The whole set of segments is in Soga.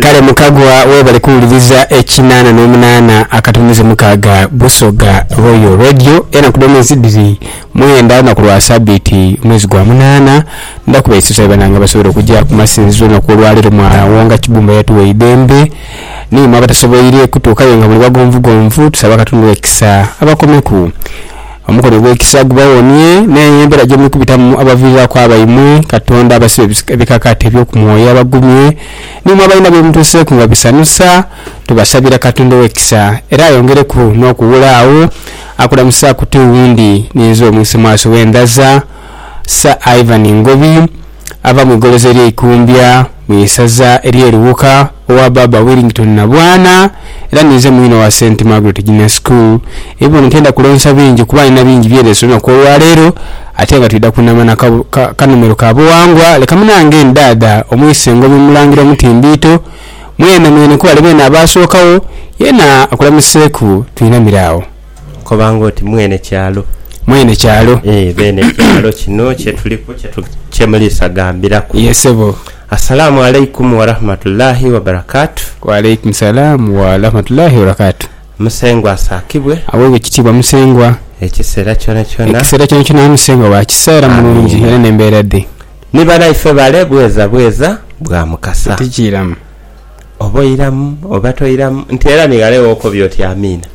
Kale mukagwa webale kuwuliriza ekinana nomunana akatumiza mukaaga Busoga Royal Radio enaku dhomwezi dhiri mwenda lunaku lwa sabiiti mwezi gwa munana ndha kubaisiza webananga abasobwere okuja kumasinzizo olunaku olwalero mwa wonga kibumba yatuwa eidhembe nimwe abatasobweire kutuukayo nga muli bagonvugonvu tusaba katonda ekisa abakomeku Omukono ogw'ekisa gubawonie n'eyo embera gye muli kubitamu abaviiriraku abaimwe. Katonda abasibe ebikakati eby'oku mwoyo abagumye. N'imwe abalina bye mutuuseeku nga bisanhusa, tubasabira Katonda ow'ekisa era ayongereku n'okuwula agho. Akulamusa ku tiwundi ni nze omwisemwaso w'endhaza, Sir Ivan Ngobi. ava mu igoloza erye Ikumbya mu isaza erye Luwuka owa baaba Willington Nabwana era ninze mwine owa Saint Margaret Junior School ebibono tenda kulonsa bingi kuba nina bingi byelese olunaku olwaleero ate nga twidha kunama na kanomero ka buwangwa leka munange ni daada omwisengo bi mulangira omutimbiito mwene mwene kwebale beene abaasookawo yena akulamuseeku twinamire awo. Koba nga oti mwene kyalo. Mwene kyalo. Ee bene kyalo kino kyetuliku kyemulisagambiraku. Ye sebo. Assalamu alaikum warahmatullahi wabarakatu. Waalaikum salaam warahmatullahi wabarakatu. Musengwa asakibwe. Awebwe ekitiibwa Musengwa. Ekisera kyonakyona. Ekisera kyonakyona ye Musengwa wa kisa era mulungi era nembeera dhe. Ni banaife bale bweza bweza bwa mukasa. Tikiiramu. Oba oiramu oba toiramu nti era ni ghale wokobye oti amiina.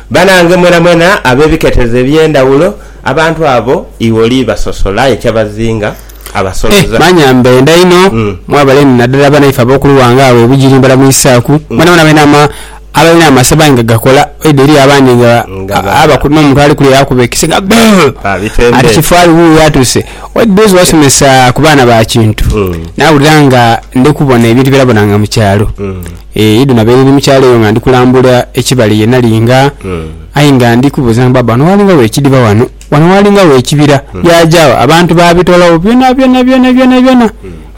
Banange mwenamwena abebiketezo ebyendhaghulo abantu abo iwe oli basosola aye kyabazinga abasoloza. Manya mbendha inho mwabale ni nadala banaife abokulughanga agho e Bugiri mbalamuisaaku mwenamwena abenaama. Abalina amasabo aye nga gakola waidha eriyo abandi nga aba n'omuntu ali kule yaakuba ekise nga buu! Ati kifu ali wuuyo atuuse. Waidha eriyo zewasomesa ku baana ba Kintu nawulira nga ndikubona ebintu byonabonanga mu kyalo. Eeh idi nabaire ndi mu kyalo eyo nga ndi kulambula ekibali ye nali nga aye nga ndi kubuuza nti baaba wano waalinga wa ekidiba wano? Wano waalinga wa ekibira? Byaja wa? Abantu baabitolawo byonabyona byonabyona byona.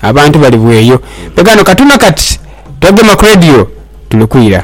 Abantu bali bweyo. Bwe ghano katuna kati twegema ku radio tuli kwira.